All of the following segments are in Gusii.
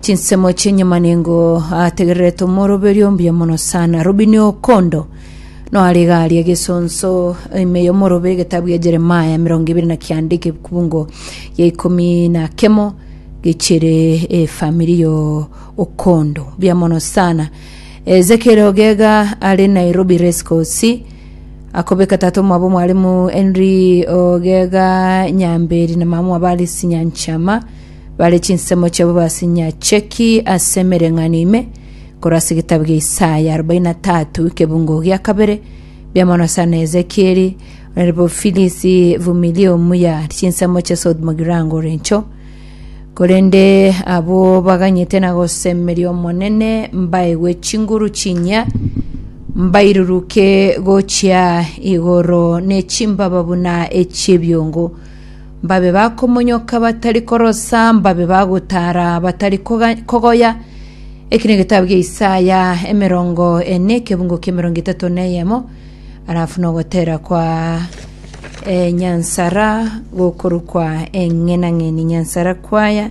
Chinsemo chi'enyuma nigo ategererete omoroberio ombuya mono sana Robinio Okondo noare iga aria egesonso ime y'omorobe egetabu gia Jeremaya mirongo ibere na kianda ekebungo gia ikomi na kemo gechere efamiri yo Okondo buya mono sana Ezekiel Ogega are Nairobi Rescosi akobeka tata omwabo mwarimu Henry Ogega Nyamberi na mama mwabo Alice Nyanchama Bare chinsemo chiabo basinyache ki ase emereng'anio ime korwa ase egetabu gia Isaya arobaini na tatu ekebungo gia kabere, biamono sana Ezekieli, onaribo Filisi vumilia omuya chinsemo chia South Mogirango orencho. Korende abwo baganyete na gosemeria Omonene mbaegwe chinguru chinyia, mbairuruke gochia igoro ne chimbaba buna echi'ebiongo. mbabe bakomonyoka batari korosa, mbabe bagotara batari koga- kogoya. Eki negetabu gia Isaya emerongo ene ekebungo kia emerongo etato na eyemo, arafu nogotera kwa eh, nyansara gokorukwa eng'enang'eni nyansara kwaya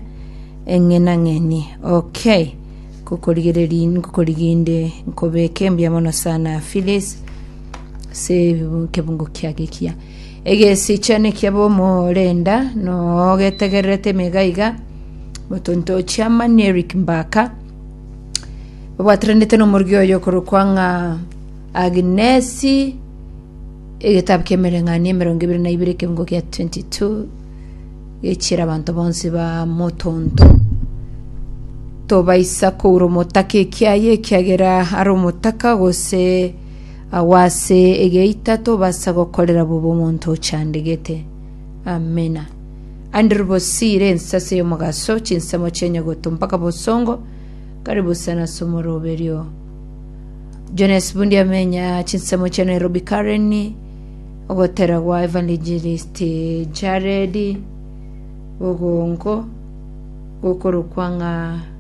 eng'enang'eni okay kokorigereri nkokoriginde nkobeke mbuya mono sana Phyllis se ebibu- ekebungo kia gekia Egesiche nekiabe omorenda nogetegererete ime iga iga, motontochi amani Eric Mbaka, obwataranete nomorigi oye okorokwa ng'a Agnesi, egetabu ki'emereng'anio emerongo ebere na ibere ekeungo kia 22 gechiera abanto bonsi ba motonto. Tobaisa koura omotaka ekiaye ekiagera are omotaka gose Agwo ase egeita tobasa gokorera bobe omonto ochandegete. Amina. Andrew Bosire, ensase y'omogaso, chinsemo chia enyogoto mpaka bosongo, karibu sana ase omoroberio. Jones Bundi amenya chinsemo chia Nairobi Karen, ogotera gwa Evangelist Jared, bogongo, gokorokwa ng'a